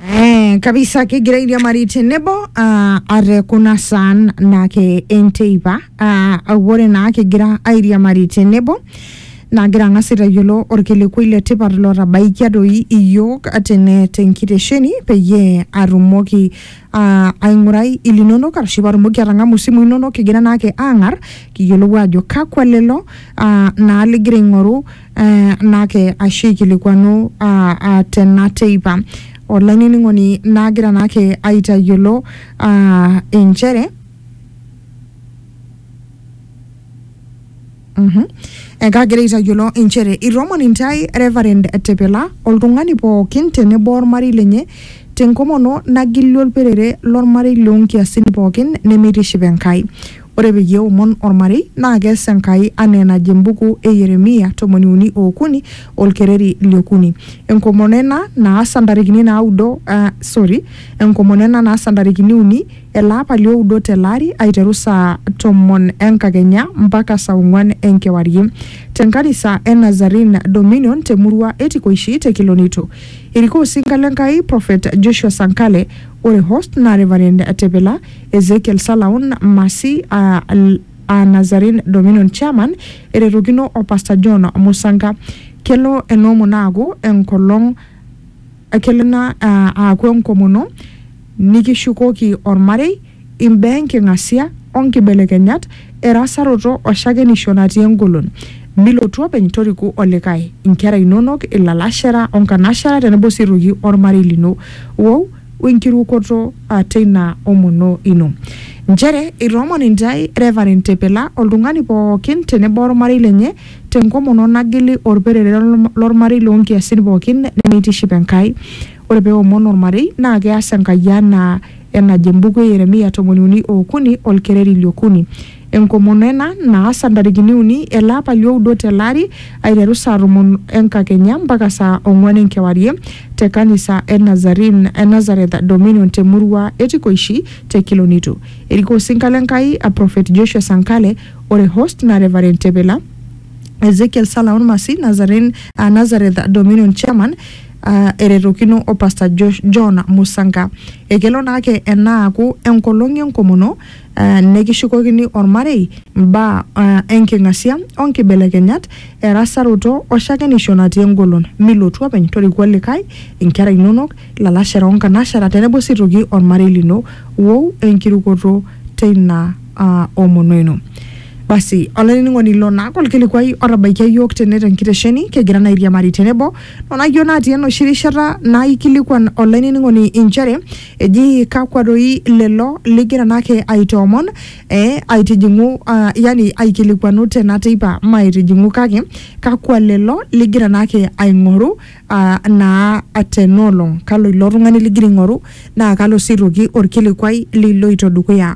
Eh, kabisa kigira airiamariti nebo uh, are kuna saan naake enteipa uh, ore naa kigira airiamari tenebo naagira ang'as aitayiolo orkilikwai le tipat lotabaikia doi iyiook tene tenkitesheni peyie atumoki uh, aing'urai ilinonok arashu patumoki atang'amu isimui inonok kigira naake aang'ar kiyiolou ajo kakwa lelo uh, naa ligira aing'oru uh, naake ashu aikilikuanu uh, uh, tena teipa olainining'oni naagira naake aitayiolo uh, inchere Mhm. Ekagira aitayiolo inchere itomon intae Reverend Tepela oltung'ani pookin tenebo ormarei lenye tenkomono nagili olperere lormarei loonkiasin pookin nemeitiship Enkai. Ore peyie eomon ormarei naa kees Enkai anaa enajo embuku e Yeremia tomoni uni ookuni olkereri liokuni. Enkomono ena naasa ntarikini naudo, ah, sorry, enkomono ena naasa ntarikini uni Ele apa li oudo te lari aiteru saa tomon e nkakenya mpaka saa ong'uan e nkewarie te nkanisa e Nazarene Dominion te murua e Tikoishi te Kilonito. Erikoo osinka le Nkai Prophet Joshua Sankale ore host naa Reverend Tepila Ezekiel Salaun Masi aa aa Nazarene Dominion Chairman eretokino o Pastor John Musanka. Kelo ena omon aaku enkolong kelo ena aaku enkomono Nikishukoki olmarei, imbaa enking'asia o nkibelekenyat, erasaroto o shakenisho natii engolon. Milotu openy, toriku olikae, inkera inonok, ilalashera o nkanashera tenebo sii aitoki olmarei lino. Wou o enkirukoto teina omono ino. Nchere eitoomon intae Reverend Tepela oltung'ani pooki tenebo olmarei lenye te nkomono nagili olperere lo lmarei loo nkiasin pooki nemeitiship Enkai. Ore pee eomon olmarei naa keas Enkai anaa enajo embuku e Yeremia tomoni uni o okuni olkereri li okuni. Enkomono ena naasa ntarikini uni ele apa li oudo tele ari aiteru saa tomon e nkakenya mpaka saa ong'uan e nkewarie te kanisa e Nazarene e Nazareth Dominion te murua e Tikoishi te Kilonito. Erikoo osinka le Nkai a Prophet Joshua Sankale ore host naa Reverend Tepela Ezekiel Salaon Masi Nazarene a Nazareth Dominion Chairman uh, eretokino o Pastor Josh John Musanga. Ekelo naake enaaku enkolong enkomono uh, nekishukokini ormarei mbaa uh, enking'asia o nkibelekenyat erasaroto o shakenisho natii engolon. Milotu openy torikua likae, inkera inonok, ilalashera o nkanashera tenebo sii toki ormarei lino. Wou enkirukoto teina uh, omono ino. Basi, olainining'oni ilo naake olkilikuai otabaikia iyiook tene tenkitesheni, kigira naa airiamari tenebo Onayio natii enoshi rishata naaikilikwan olainining'oni inchere eji kakwa doi lelo ligira naake aitoomon eh, aitijing'u ah, yani aikilikwanu tena teipa maaitijing'u kake kakwa lelo ligira naake aing'oru ah, naa tena olong. Kalo ilo tung'ani ligira aing'oru naa kalo sii aitoki orkilikwai liloito dukuya